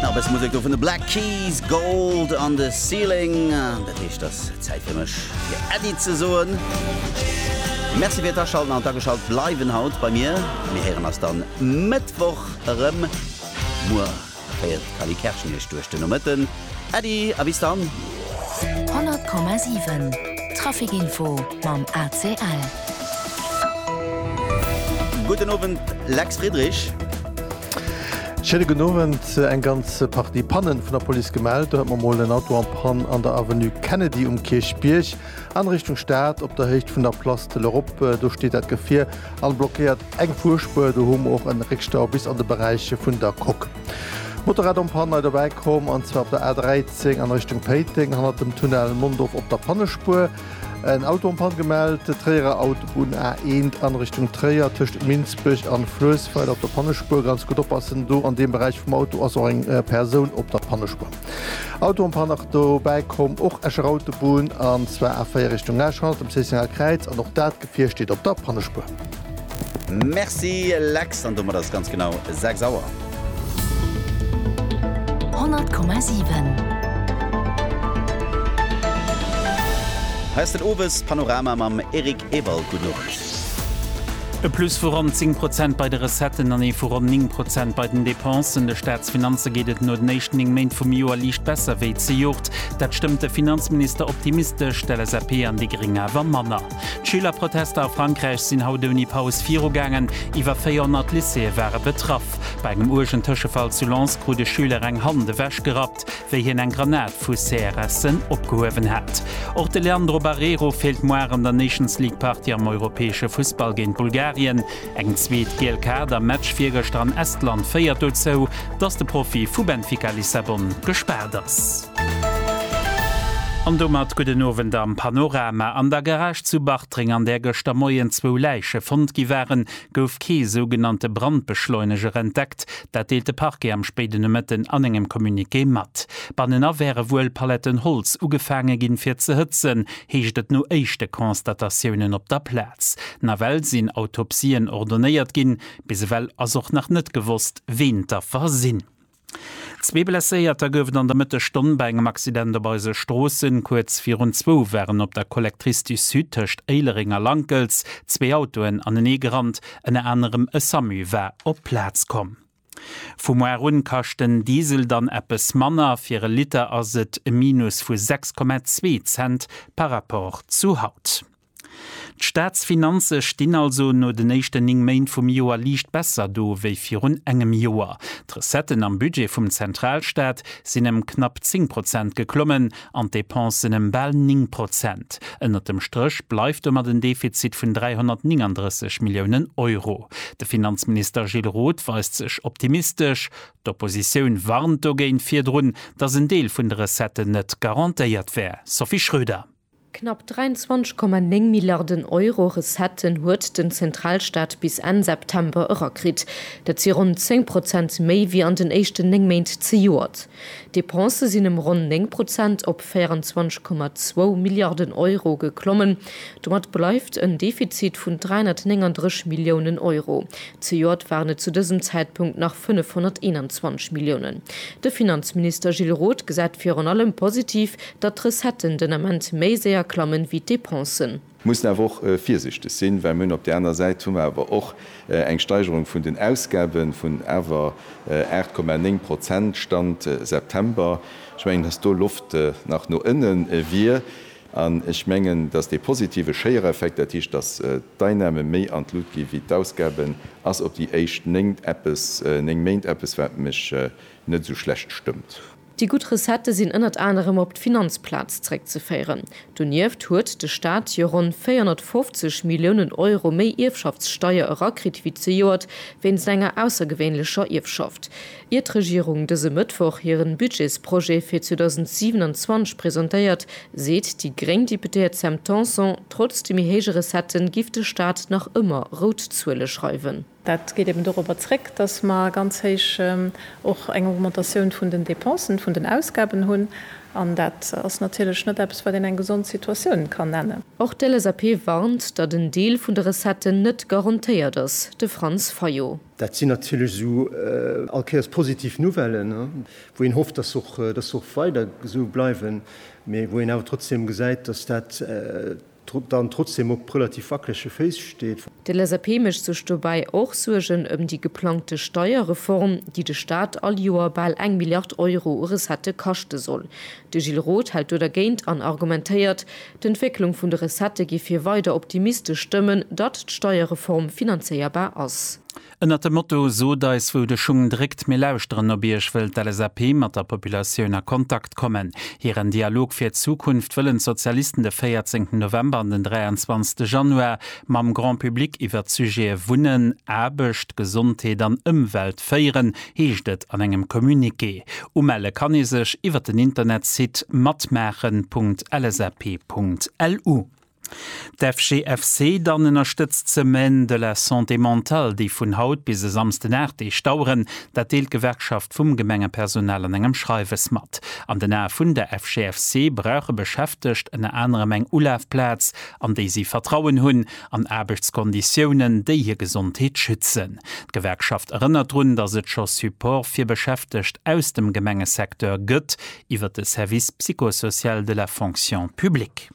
Nach e bësse Musek do vun de Black Keys, Gold on the Ceiling. Dat heescht, et ass Zäit fir mech fir Äddi ze soen. Merci fir d'Aschalten an d'Ageschalt bleiwen haut bei mir. Mir héieren eis dann Mëttwoch erëm. Muer féiert d'Cally Kerschen iech duerch den Nomëtten. Äddi a bis dann! 100,7 Traficinfo mam ACL. Gudden Owend Lex Friedrich. Schéine gudden Owend. Eng ganz Partie Pannen vun der Police gemellt. Do hat mer mol en Auto en Panne an der Avenue Kennedy um Kierchbierg an Richtung Stad op der Héicht vun der Place de l'Europe. Do steet dat Gefier an blockéiert eng Fuerspuer. Do hu mer och en Réckstau bis an de Beräich vun der Coque. Motorrad am Panne nei dobäi komm, an zwar op der A13 an Richtung Péiteng hannert dem Tunnel Mondorf op der Pannespuer. En Auto am Panne gemellt, Tréierer Autobunn A1 an Richtung Tréier tëscht Minsbech an Fluessweiler op der Pannespuer. Ganz gutt oppassen do, an deem Beräich vum Auto ass och eng Persoun op der Pannespuer. Auto am Panne nach dobäi komm, och Escher Autobunn, an zwar A4 Richtung Esch hannert dem Cécénal Kräiz, an och dat Gefier steet op der Pannespuer. Merci Lex, an domat ass et ganz genau 6 Auer. 100,7. Hei ass den Owespanorama mam Eric Ewald. Gudden Owend. E Plus vu ronn 10 Prozent bei de Recetten an ee vu ronn 9 Prozent bei den Depensen. De Staatsfinanze geet et no den éischten 9 Méint vum Joer liicht besser wéi zejoert. Dat stëmmt de Finanzminister optimistesch, d'LSAP an déi Gréng awer manner. D'Schülerprotester a Frankräich sinn haut ouni Paus virugaangen. Iwwer 400 Lycéeë ware betraff. Bei engem uergen Tëschefall zu Lens krut e Schüler eng Hand ewechgerappt, wéi hien eng Granat vu CRS'en opgehuewen hat. Och de Leandro Barreiro feelt muar an der Nations League-Partie am europäesche Fussball géint Bulgarien. Eng zweet giel Kaart am Match virgëschter an Estland féiert dozou, dass de Profi vu Benfica Lissabon gespaart ass. An domat gudden Owend am Panorama. An der Garage zu Bartreng, an där gëschter Moien zwou Läiche fonnt gi waren, gouf kee sougenannte Brandbeschleuneger entdeckt. Dat deelt de Parquet am spéiden Nomëtten an engem Communiqué mat. Bannenan wäre wuel Paletten Holz ugefaange ginn, fir ze hëtzen. heescht et no éischte Constatatiounen op der Plaz. Nawell sinn Autopsien ordonéiert ginn. Bis ewell ass och nach net gewosst, ween d'Affer sinn. Zwee Blesséierter gouf et an der Mëttesstonn bei engem Accident op eise Stroossen. Kuerz virun zwou waren op der Collectrice du Sud tëscht Éilereng a Lankels zwee Autoen anenee gerannt. Ënner anerem e Samu war op d'Plaz komm. Vu muar un kascht den Diesel dann eppes manner, fir e Liter ass et e Minus vu 6,2 Cent par rapport zu haut. D'Staatsfinanze stinn also no den éischten 9 Méint vum Joer liicht besser do wéi virun engem Joer. D'Recetten am Budget vum Zentralstaat sinn ëm knapp 10 Prozent geklommen, an d'Depensen ëm bal 9 Prozent. Ënnert dem Stréch bleift domat en Defizit vun 339 Milliounen Euro. De Finanzminister Gilles Roth weist sech optimistesch. D'Oppositioun warnt dogéint virdrun, datt en Deel vun de Recetten net garantéiert wär. Sophie Schröder. Knapp 23,9 Milliarden Euro Recetten huet den Zentralstaat bis Enn September erakritt. Dat si ronn 10 Prozent méi wéi an den éischten 9 Méint zejoert. D'Depensë sinn ëm ronn 9 Prozent op 24,2 Milliarden Euro geklommen. Domat bleift en Defizit vun 339 Milliounen Euro. Zejoert waren et zu dësem Zäitpunkt nach 521 Milliounen. De Finanzminister Gilles Roth gesäit virun allem positiv, datt d'Recetten den Ament méi séier klammen, wéi d'Depensen. Mir mussen awer och virsichteg sinn, well mir hunn op där aner Säit hu mer awer och eng Steigerung vun den Ausgabe vun awer 8,9 Prozent, Stand September. Ech mengen, dass do Loft nach no ënne wier. An ech mengen, dass dee positive Schéiereffekt, dat heescht, dass d'Einnahme méi an d'Lut gi wéi d'Ausgaben, ass op déi éischt néng Eppes, néng Méint eppes, wat mech net esou schlecht stëmmt. Déi gutt Recettë sinn ënnert anerem op d'Finanzplaz zréckzeféieren. Donieft huet de Staat jo ronn 450 Milliounen Euro méi Ierfschaftssteier erakritt wéi zejoert wéinst enger aussergewéinlecher Ierfschaft. Ier d'Regierung dëse Mëttwoch hiren Budgetsprojet fir 2027 presentéiert, seet déi gréng Deputéiert Sam Tanson, trotz de méi héije Recettë giff de Staat nach ëmmer rout Zuele schreiwen. Dat geet eben dorobber zréck, datt mer ganz héich och eng Augmentatioun vun den Dépensen, vun den Ausgaben hunn, an dat ass natierlech net eppes, wat een eng gesond Situatioun kann nennen. Och d'LSAP warnt, datt en Deel vun de Recetten net garantéiert ass. De Franz Fayot. Dat sinn natierlech esou all Kéiers positiv Nouvellen, wou een hofft, datt se och weider esou bleiwen, mee wou een awer trotzdeem gesäit, datt dat dann trotzdem op relativ wackelege Féiss steet. De LSAP mécht sech dobäi och Suergen ëm déi geplangte Steierreform, déi de Staat all Joer bal eng Milliard Euro u Recettë kaschte soll. De Gilles Roth hält do dergéint an argumentéiert, d'Entwécklung vun de Recettë géif hie weider optimistesch stëmmen, datt d'Steierreform finanzéierbar ass. Ënnert dem Motto Sot eis wou de Schung dréckt, mir lauschteren op iech wëll d'LSAP mat der Populatioun a Kontakt kommen. Hiren Dialog fir d'Zukunft wëllen d'Sozialisten de 14 November an den 23 Januar mam Grand Public iwwert d'Sujete Wunnen, Aarbecht, Gesondheet an Ëmwelt féieren, heescht et an engem Communiqué. Umelle kann ee sech iwwert den Internetsite matmaachen. LSAP.lu. D'FGFC dann ënnerstëtzt d'Semaine de la Santé Mentale, déi vun haut bis e Samsden 8 Deeg daueren. Dat deelt d'Gewerkschaft vum Gemengepersonal an engem Schreiwes mat. An den Ae vun der FGFC brauche Beschäftegt ënner anerem eng Ulafplaz, an déi si Vertrauen hunn, an Aarbechtskonditiounen, déi hir Gesondheet schützen. D'Gewerkschaft erënnert drun, datt et scho Support fir Beschäftegt aus dem Gemengesecteur gëtt iwwer de Service psychosocial de la Fonction publique.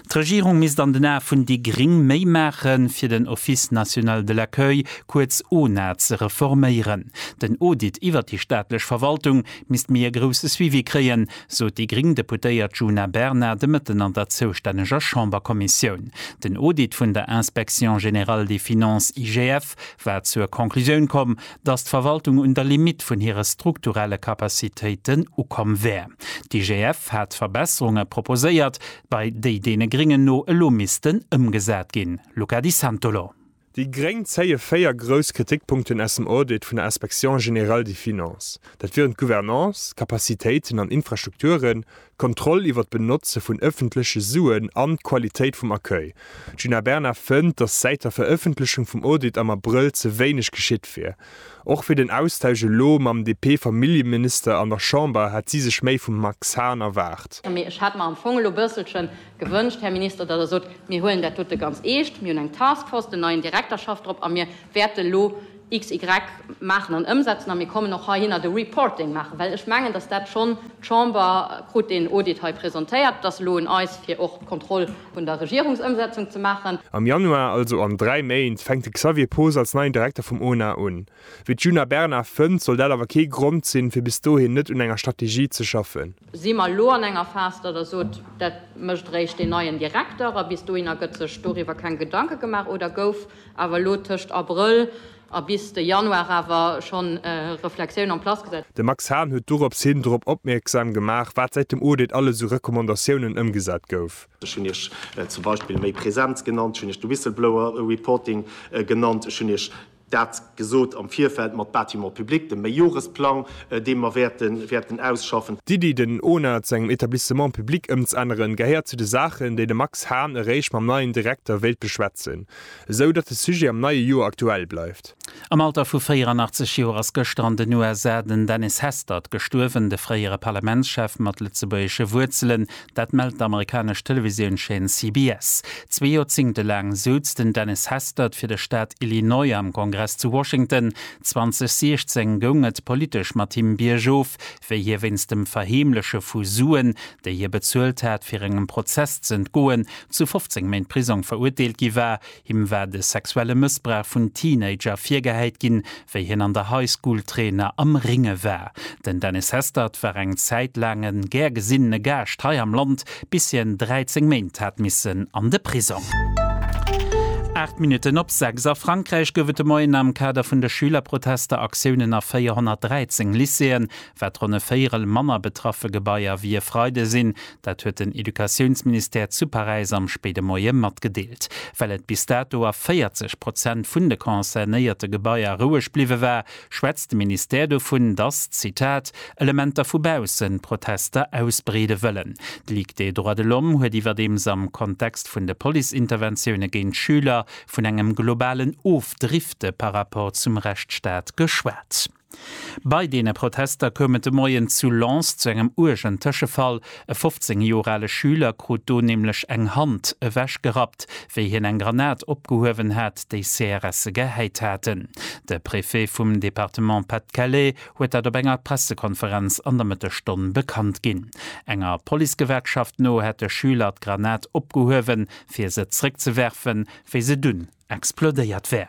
D'Regierung misst an den Ae vun déi Gring méi maache fir den Office national de l'accueil, kuerz ONA, ze reforméieren. Den Audit iwwert déi staatlech Verwaltung misst méi e grousse Suivi kréien, sot déi gring Deputéiert Djuna Bernard de Mëtten an der zoustänneger Chamberkommissioun. Den Audit vun der Inspection générale des finances, IGF, Chef war zur Conclusioun komm, datt d'Verwaltung un der Limitt vun hire strukturelle Capacitéiten ukomm wär. D'IGF hat Verbesserunge proposéiert, bei déi deene Gringen no elo missten ëmgesat ginn. Luca Di Santolo. Déi Gréng zéie véier grouss Kritikpunkten aus dem Audit vun der Inspection générale des finances. Dat wieren d'Gouvernance, d'Capacitéiten an Infrastrukturen, d'Kontroll iwwer d'Benotze vun ëffentleche Suen an d'Qualitéit vum Accueil. D'Djuna Bernard fënnt, datt säit der Verëffentlechung vum Audit am Abrëll ze wéineg geschitt wier. Och fir den Austausch elo mam DP-Familljeminister an der Chamber hätt si sech méi vum Max Hahn erwaart. Mee ech hätt mer am Fong elo bësselche gewënscht, Här Minister, datt Der sot, Mir huelen dat dote ganz eescht, mir hunn eng Task Force, den neien Direkter schafft drop a mir wäerte elo, XY maachen an ëmsetzen a mir kommen och heihinner de Reporting maachen, well ech mengen, dass dat schonn, d'Chamber krut deen Audit hei presentéiert, et ass elo un eis, fir och d'Kontroll vun der Regierungsëmsetzung ze maachen. Am Januar, also an dräi Méint, fänkt de Xavier Poos als neien Direkter vum ONA un. Wéi d'Djuna Bernard fënnt, soll dat awer kee Grond sinn, fir bis dohin net un enger Strategie ze schaffen. Si mer elo an enger Phas, datt Der sot, dat mécht eréischt deen neien Direkter a bis dohinner gëtt sech doriwwer keng Gedanke gemaach, oder gouf, awer elo tëscht Abrëll a bis de Januar awer schonn Reflexioun en place gesat. De Max Hahn huet dorops hin drop opmierksam gemaach, wat säit dem Audit alles u Recommandatiounen ëmgesat gouf. Ech hunn Iech zum Beispill méi Präsenz genannt, ech hunn Iech de Whistleblower Reporting genannt, ech hunn Iech dat. Gesot am Virfeld mat Bâtiments publics, dem Meijoresplang, dee mer wäerten ausschaffen. D'Iddi, den ona zu engem Etablissement public ëmzänneren, gehéiert zu de Saachen, déi de Max Hahn eréischt mam neien Direkter wéilt beschwätzen, esou datt de Sujet am neie Joer aktuell bleift. Am Alter vu 84 Joer ass gëschter an den USA den Dennis Hastert gestuerwen, de fréiere Parlamentschef mat lëtzebuergesche Wuerzelen. Dat mellt d'amerikanesch Televisiounscheen CBS. Zwee Joerzéngte laang souz den Dennis Hastert fir de Staat Illinois am Kongress zu Washington. 2016 goung et politesch mat him biergof, wéi hie wéinst dem Verheemleche vu Suen, déi hie bezuelt hat, fir engem Prozess z'entgoen, zu 15 Méint Prisong verurteelt gi war. Him war de sexuelle Mëssbrauch vun Teenager virgehäit ginn, wéi hien an der High School Trainer am Ringe war. Den Dennis Hestert war eng Zäit laang e gär gesinnene Gaascht hei am Land, bis hien 13 Méint hat missen an de Prisong. Aacht Minutten op sechs. A Frankräich gouf et de Moien am Kader vun de Schülerprotester Aktiounen a 413 Lycéeën. Wat ronn e Véierel manner betraffe Gebaier wéi e Freide sinn Dat huet den Educatiounsministère zu Paräis am spéide Moie matgedeelt. Well et bis dato a 40 Prozent vun de concernéierte Gebaier roueg bliwwe war, schwätzt de Ministère dovun, datt, Zitat, Elementer vu bausse Protester ausbreede wëllen. D'Ligue des droits de l'homme huet iwwerdeems am Kontext vun de Police-Interventioune géint Schüler vun engem globalen Ofdrifte par rapport zum Rechtsstaat geschwat. Bei deene Protester koum et de Moien zu Lens zu engem uergen Tëschefall. E 15 Joer ale Schüler krut do nämlech eng Hand ewech gerappt, wéi hien eng Granat opgehuewen hat, déi CRSe gehäit haten. De Préfet vum Departement Pas-de-Calais huet dat op enger Pressekonferenz an der Mëttesstonn bekannt ginn. Enger Policegewerkschaft no hätt de Schüler d'Granat opgehuewen, fir se zréckzewerfen, wéi se dunn explodéiert wär.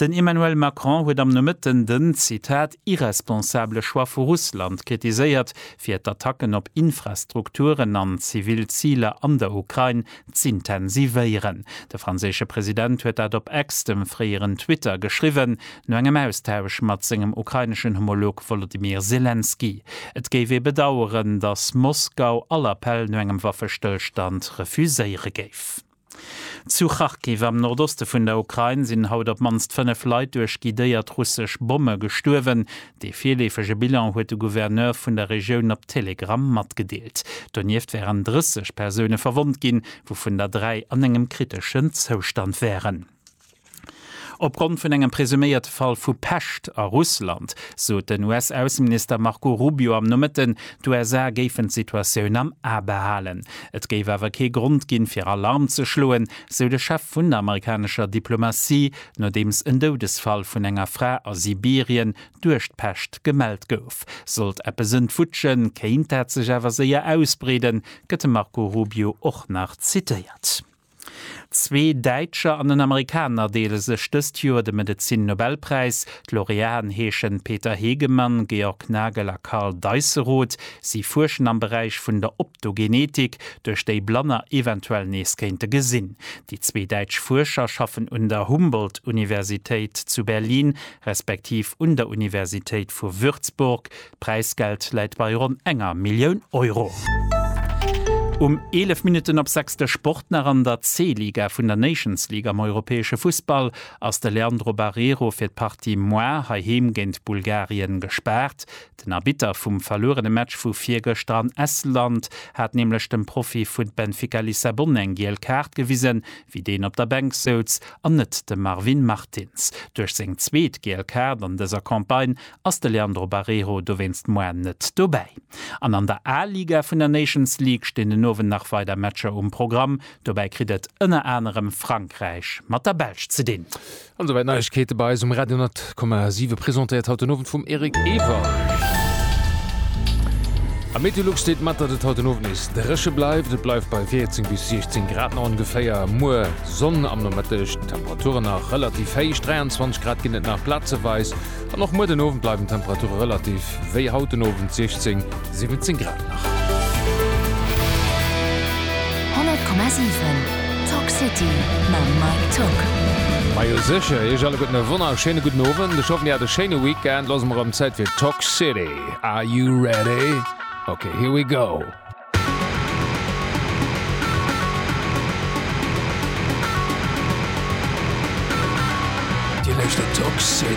Den Emmanuel Macron huet am Nomëtten den, Zitat, irresponsabele Choix vu Russland kritiséiert, fir d'Attacken op Infrastrukturen an zivil Ziler an der Ukrain z'intensivéieren. De franséische President huet dat op X, dem fréieren Twitter, geschriwwen, no engem Austausch mat sengem ukraineschen Homolog Wolodymyr Selenskyj. Et géif ee bedaueren, datt Moskau all Appell no engem Waffestëllstand refuséiere géif. Zu Kharkiv am Nordoste vun der Ukrain sinn haut op d'mannst 5 Leit duerch guidéiert russesch Bomme gestuerwen. Dee virleefege Bilan huet de Gouverneur vun der Regioun op Telegram matgedeelt. Donieft wären 30 Persoune verwonnt ginn, wouvun der dräi an engem kriteschen Zoustand wären. Opgrond vun engem presuméierte Fall vu Pescht a Russland sot den US-Ausseminister Marco Rubio am Nomëtten, d'USA géifen d'Situatioun am A behalen. Et géif awer kee Grond ginn, fir Alarm ze schloen, sou de Chef vun der amerikanescher Diplomatie, nodeems en Doudesfall vun enger Fra a Sibirien duerch d'Pescht gemellt gouf. Sollt eppes entwutschen, kéint dat sech awer séier ausbreeden, gëtt de Marco Rubio och nach zitéiert. Zwee Däitscher an en Amerikaner deele sech dëst Joer de Medezin-Nobelpräis. D'Laureaten heeschen Peter Hegemann, Georg Nagel a Karl Deisseroth. Si fuerschen am Beräich vun der Optogenetik, duerch déi Blanner eventuell nees kéinte gesinn. Déi zwee däitsch Fuerscher schaffen un der Humboldt-Universitéit zu Berlin respektiv un der Universitéit vu Würzburg. D'Präisgeld läit bei ronn enger Millioun Euro. Um 11 Minutten op 6 de Sport nach, An der C-Liga vun der Nations League am europäesche Fussball ass de Leandro Barreiro fir d'Partie moi heiheem géint Bulgarien gespaart. Den Arbitter vum verluerene Match vu virgëschter an Estland hat nämlech dem Profi vu Benfica Lissabon eng giel Kaart gewisen, wéi deen op der Bänk souz, an net dem Marvin Martins. Duerch seng zweet giel Kaart an dëser Campagne ass de Leandro Barreiro dowéinst moarn net dobäi. An an der A-Liga vun der Nations League stinn den Owend nach weider Matcher um Programm. Dobäi kritt et ënner anerem Frankräich mat der Belsch ze dinn. An souwäit d'Neiegkeete bei eis um Radio 10,7, presentéiert haut den Owend vum Eric Ewer. Am Meteolux steet mat, datt et haut den Owend nees dréche bleift. Et bleift bei 14 bis 16 Grad no ongeféier. Muer Sonn am Nomëtteg, d'Temperature nach relativ héich, 23 Grad ginn et nach plazeweis. An och muer den Owend bleiwen d'Temperature relativ wéi haut den Owend, 16, 17 Grad nach. 100,7 Talk City mam Mike Tück. Majo sécher, iech alleguerten e wonnerschéine gudden Owend. Ech hoffen dir hat e schéine Weekend. Lo ass emol rëm Zäit fir Talk City. Are you ready? Ok, here we go! Dir luuschtert Talk City.